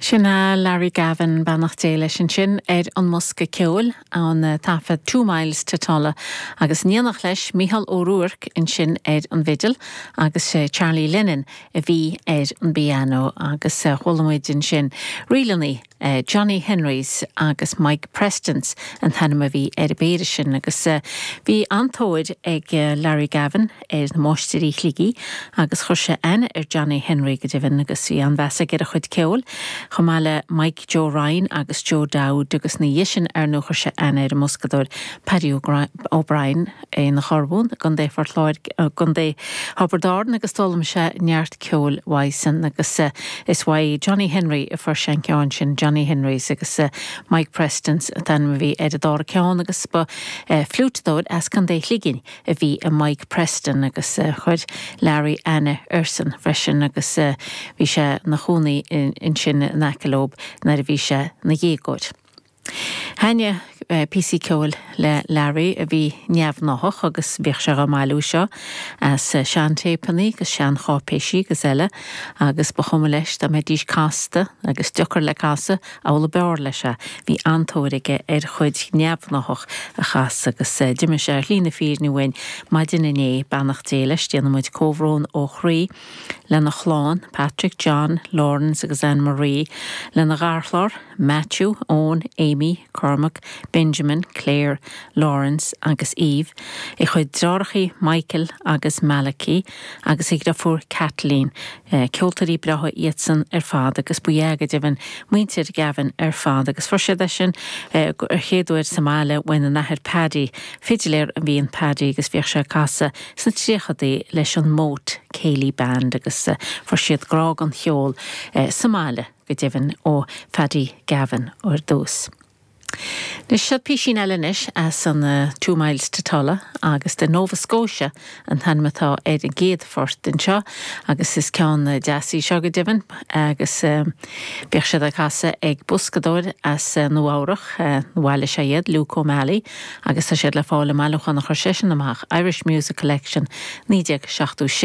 Sin é Larry Gavin, beannacht Dé leis ansin, ar an mbosca ceoil ón taifead Two Miles to Tulla agus in éineacht leis Mícheál Ó Ruairc ansin ar an bhfidil agus Charlie Lennon a bhí ar an bpianó agus chuala muid ansin ríleanna Johnny Henrys agus Mike Prestons an t-ainm a bhí ar an bpéire sin agus bhí an-tóir ag Larry Gavin ar na Máistirí Shligigh agus chuir sé aithne ar Johnny Henry go deimhin agus bhí an-mheas aige ar a chuid ceoil, chomh maith le Mike Joe Ryan agus Joe Dowd agus ina dhiaidh sin, ar ndóigh, chuir sé aithne ar an mboscadóir Paddy O'Brien. Ón Aonach Urmhumhan i gContae Phort Láirge, i gContae Thiobraid Árann agus d'fhoghlaim sé neart ceoil uaidhsean agus is uaidh Johnny Henry a fuair sé an ceann sin, Johnny Henry's agus Mike Preston's an t-ainm a bhí ar an dara ceann agus ba fliúiteadóir as Contae Shligigh a bhí i Mike Preston agus chuir Larry aithne airsean freisin agus bhí sé 'na chúnaí ansin in aice leob nuair a bhí sé 'na dhéagóir. Thaitníodh píosaí ceoil le Larry a bhí neamhgnáthach agus bhíodh sé á mbailiú seo as seantéipeanna agus seancháipéisí agus eile agus ba chuma leis dá mbeidís casta agus deocair le casadh, amhlaidh ab fhearr leis é. Bhí an-tóir aige ar chuid neamhgnáthach a chasadh agus d'imigh sé ar shlí na fírinne uainn maidin inné, beannacht Dé leis. Déanaimid comhbhrón ó chroí lena chlann, Patrick, John, Laurence agus Anne Marie, lena gharchlann, Matthew, Eoin, Amy, Cormac, Benjamin, Claire, Laurence agus Eve, a chuid dreathárachaí Michael agus Malachy agus a dhriofúr Kathleen. Ceoltóirí breátha iadsan ar fad agus ab ea, go deimhin, muintir Gavin ar fad agus fuair siad léas air an chéad uair sa mbaile óna n-athair Paddy, fidiléir a bhí in Paddy agus bhíodh sé ag casadh sna tríochadaí leis an Moate Céilí Band agus fuair siad grá don cheol sa mbaile. go deimhin ó Phaddy Gavin ar dtús. Anois, seo písín eile anois as an Two Miles to Tulla, agus The Nova Scotia an t-ainm atá ar an gcéad phort anseo, agus is ceann deas í seo go deimhin, agus bhíodh siad á casadh ag boscadóir as Nua Eabhrach, nó bhail is é iad, Luke O'Malley, agus tá siad le fáil i mbailiúchán a chuir seisean amach, Irish Music Collection, 1976.